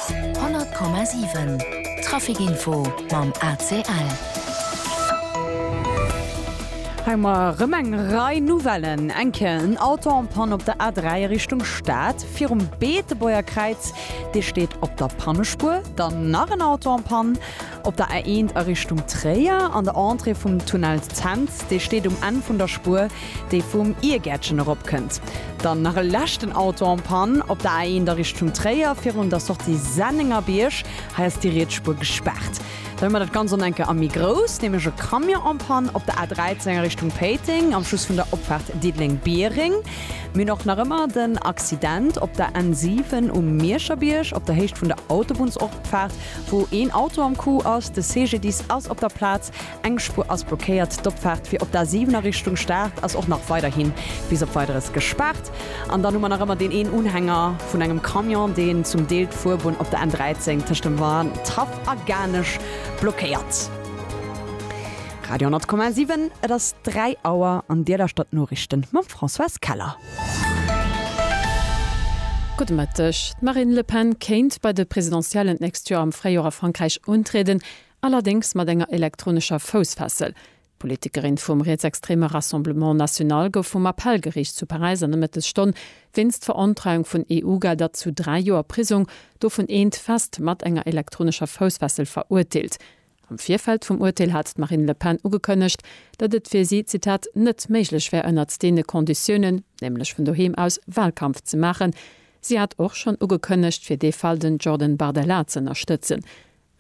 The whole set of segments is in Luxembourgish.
100,7 Trafic Info mam ACL. Hei mar erëm eng Rei Nouvellen. Eng Kéier en Auto en panne op der A3 a Richtung Stad, virum Beetebuerger Kräiz, dee steet op der Pannespuer. Dann nach en Auto en panne Op der A1 a Richtung Tréier, an der Entrée vum Tunnel Cents, dee steet um Enn vun der Spuer, déi vum Iergäertchen eropkënnt. Dann nach e leschten Auto en panne op der A1 a Richtung Tréier, virun der Sortie Sennengerbierg. Hei ass déi riets Spuer gespaart. Dann hu mer dat Ganzt an enke a méi grouss, nämlech e Camion en panne op der A13 a Richtung Péiteng, am Schluss vun der Opfaart Diddeleng-Biereng. Mir hunn och nach ëmmer den Accident op der N7 um Mierscherbierg, op der Héicht vun der Autobunnsopaart. Wou een Auto am Coup ass, de CGDIS ass op der Plaz, eng Spuer ass blockéiert, d'Opfaart fir op d'A7 a Richtung Start ass och nach weiderhi bis op Weideres gespaart. An dann hu mer nach ëmmer deen een Unhänger vun engem Camion, deen zum Deel d'Fuerbunn op der N13 tëscht dem Wandhaff a Garnech blockéiert. Radio 10,7, Et ass 3 Auer an Dir lauschtert d'Noriichten mam Françoise Keller. Gudde Mëtteg. D'Marine Le Pen kéint bei de Presidentiellen d'nächst Joer am Fréijor a Frankräich untrieden, allerdéngs mat enger elektronescher Foussfessel. D'Politikerin vum rietsextreme Rassemblement National gouf vum Appellgeriicht zu Paräis an der Mëttesstonn wéinst Verontreiung vun EU-Gelder zu dräi Joer Prisong, dovun eent fest, mat enger elektronescher Foussfessel verurteelt. Am Virfeld vum Urteel hat d'Marine Le Pen ugekënnegt, datt et fir si, Zitat, net méiglech wär ënnert deene Konditiounen, nämlech vun doheem aus, Wahlkampf ze maachen. Si hat och schonn ugekënnegt, fir dee Fall den Jordan Bardella ze ënnerstëtzen.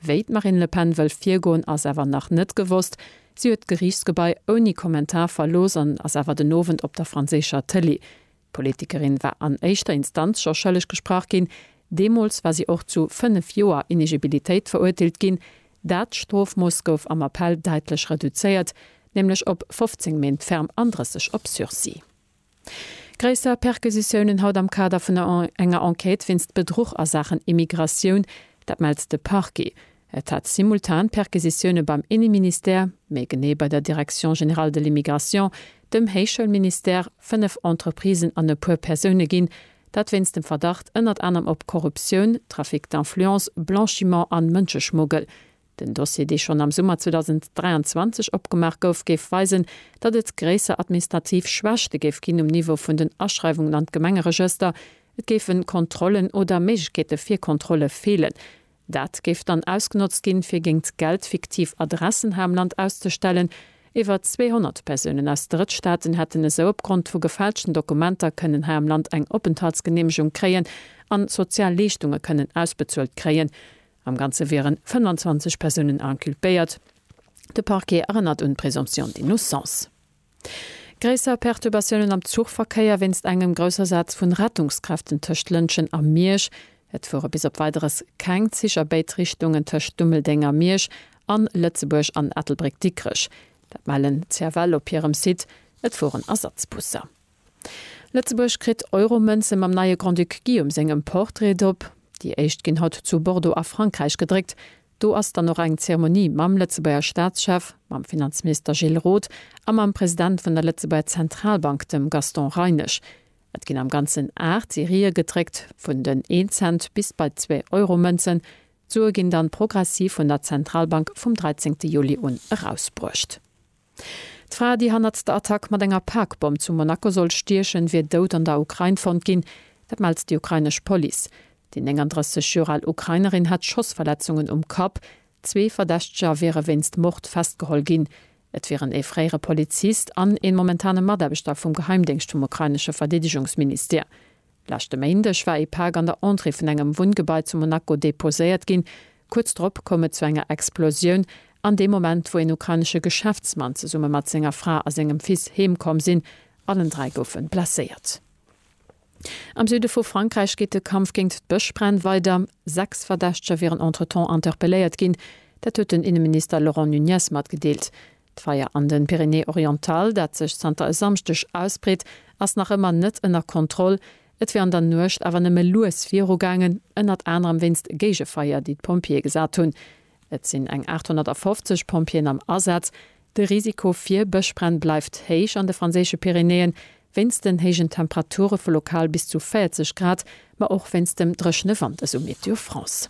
Wéi d'Marine Le Pen wëll virgoen, ass awer nach net gewosst. Si huet d'Geriichtsgebai ouni Kommentar verlooss an ass awer den Owend op der franséischer Tëlee. D'Politikerin war an éischter Instanz scho schëlleg gesprach ginn. Deemools war si och zu fënnef Joer Inegibilitéit verurteelt ginn. Dat Strofmooss gouf am Appell däitlech reduzéiert, nämlech op 15 Méint ferm an 30 op Sursis. Gréisser Perquisitiounen haut am Kader vun enger Enquête wéinst Bedruch a Saachen Immigratioun, dat mellt de Parquet. Et hat simultan Perquisitioune beim Inneministère, méi genee bei der Direction générale de l'immigration, dem Héichschoulministère, fënnef Entreprisen an e puer Persoune ginn. Dat wéinst dem Verdacht ënnert anerem op Korruptioun, Trafic d'influence, Blanchiment an Mënscheschmuggel. Den Dossier, dee schonn am Summer 2023 opgemaach gouf, géif weisen, datt et gréisser administrativ Schwächte géif ginn um Niveau vun den Aschreiwungen an d'Gemengeregëster, et géifen Kontrollen oder Méiglechkeete fir Kontrolle feelen. Dat géif dann ausgenotzt ginn, fir géingt Geld fiktiv Adressen hei am Land auszestellen. Iwwer 200 Persounen aus Drëttstaaten hätten esou opgrond vu gefälschten Dokumenter kënnen hei am Land eng Openthaltsgeneemegung kréien an sozial Leeschtunge kënnen ausbezuelt kréien. Am Ganze wieren 25 Persounen inculpéiert. De Parquet erënnert un d'Présomption d'innocence. Gréisser Perturbatiounen am Zuchverkéier wéinst engem Groussasaz vun Rettungskräften tëscht Lëntgen a Miersch. Et fuere bis op Weideres keng Zich a béid Richtungen tëscht Dummeldeng a Miersch an Lëtzebuerg an Ettelbréck-Dikrech. Dat mellen d'CFL op hirem Site. Et fueren Ersatzbusser. Lëtzebuerg kritt Euromënze mam neie Grand-Duc Guillaume sengem Portrait drop. Déi éischt ginn haut zu Bordeaux a Frankräich gedréckt. Do ass dann och eng Zeremonie mam Lëtzebuerger Staatschef, mam Finanzminister Gilles Roth a mam President vun der Lëtzebuerger Zentralbank, dem Gaston Reinesch. Et ginn am Ganzen 8 Serië gedréckt, vun den Een-Cent bis bei d'Zwee-Euro-Mënzen. D'Sue ginn dann progressiv vun der Zentralbank vum 13 Juli un erausbruecht. D'Fra, déi hannert der Attack mat enger Parkbomm zu Monaco sollt stiechen, wier dout an der Ukrain fonnt ginn. Dat mellt déi ukrainesch Police. Déi 39 Joer al Ukrainerin hätt Schossverletzungen um Kapp. Zwee Verdächteger wiere wéinst Mord festgeholl ginn. Et wieren ee fréiere Polizist an een momentane Mataarbechter vum Geheimdéngscht vum ukrainesche Verdeedegungsministère. Leschte Méindeg war ee Pak an der Entrée vun engem Wunngebai zu Monaco deposéiert ginn. Kuerz drop koum et zu enger Explosioun, an deem Moment, wou een ukrainesche Geschäftsmann zesumme mat senger Fra a sengem Fils heem komm sinn. Allen dräi goufe blesséiert. Am Süde vu Frankräich geet de Kampf géingt d'Bëschbränn weider. Sechs Verdächteger wieren entretemps interpelléiert ginn. Dat huet den Inneminister Laurent Nunez matgedeelt. D'Feier an den Pyrénées-Orientales, dat sech zanter e Samschdeg ausbreet, ass nach ëmmer net ënner Kontroll. Et wier an der Nuecht awer nëmme lues viru gaangen, ënnert anerem wéinst Géigefeier, déi d'Pompjeeë gesat hunn. Et sinn eng 850 Pompjeeën am Asaz. De Risiko fir Bëschbränn bleift héich an de franséische Pyrénéeën, wéinst den héijen Temperature vu lokal bis zu 40 Grad, ma och wéinst dem dréchene Wand, esou Météo France.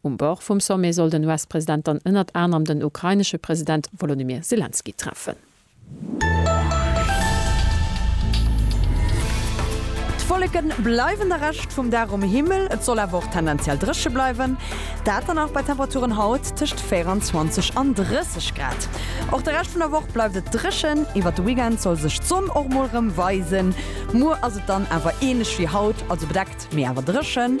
Um Bord vum Sommet soll den US-President dann ënnert anerem den ukrainesche President Wolodymyr Selenskyj treffen. D'Wolleke bleiwen de Rescht vum Dag um Himmel, et soll awer och tendenziell dréche bleiwen, dat dann och bei Temperaturen haut tëscht 24 an 30 Grad. Och de Rescht vun der Woch bleift et dréchen, iwwert de Weekend soll sech d'Sonn och mol rëm weisen. Muer ass et dann awer änlech wéi haut, also bedeckt, mee awer dréchen.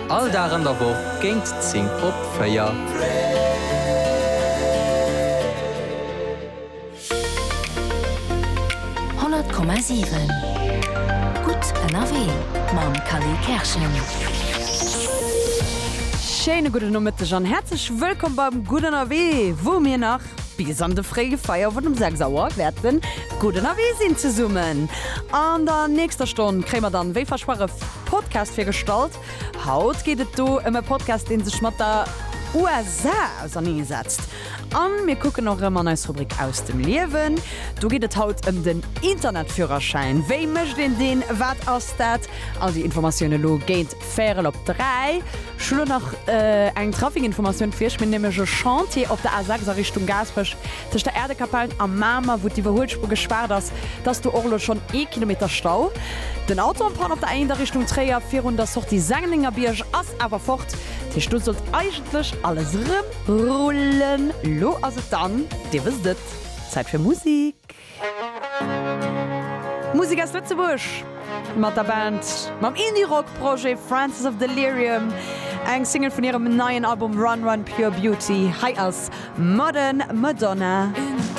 All Dag an der Woch géint 10 op 4. Honnert Komma siwen, gutt ënnerwee mam Kally Kerschen. Schéine gudde Nomëtteg an häerzlech wëllkomm beim Gutt Ënnerwee, wou mir nach Bis an de fréie Feierwon um 6 Auer wäert en gudden Avis sinn. Zesummen an der nächster Stonn kréie mer dann, wéi versprach, e Podcast virgestallt. Haut geet et do ëm e Podcast, dee sech mat der USA auserneesetzt. An mir kucken och erëm an eis Rubrik Aus dem Liewen. Do geet et haut ëm den Internetführerschäin. Wéi mécht een deen? Wat ass dat? All déi Informatioune lo géint Färel op 3. Ech hunn elo nach eng Traficinformatioun fir Iech. Mir hunn nämlech e Chantier op der A 6 a Richtung Gaasperech, tëscht der Äerdekapell a Mamer, wou d'Iwwerhuelspur gespaart ass. Et ass do och elo schonn ee Kilometer Stau. Den Auto en panne op der A 1 a Richtung Tréier, virun der Sortie Sennengerbiërg, ass awer fort. Dat heescht, do sollt eigentlech alles erëm rullen. Lo ass et dann, Dir wësst et, Zäit fir Musik. Musek aus Lëtzebuerg mat der Band mam Indie-Rock-Projet Francis of Delirium, eng Single vun hirem neien Album Run Run Pure Beauty. Hei ass Modern Madonna.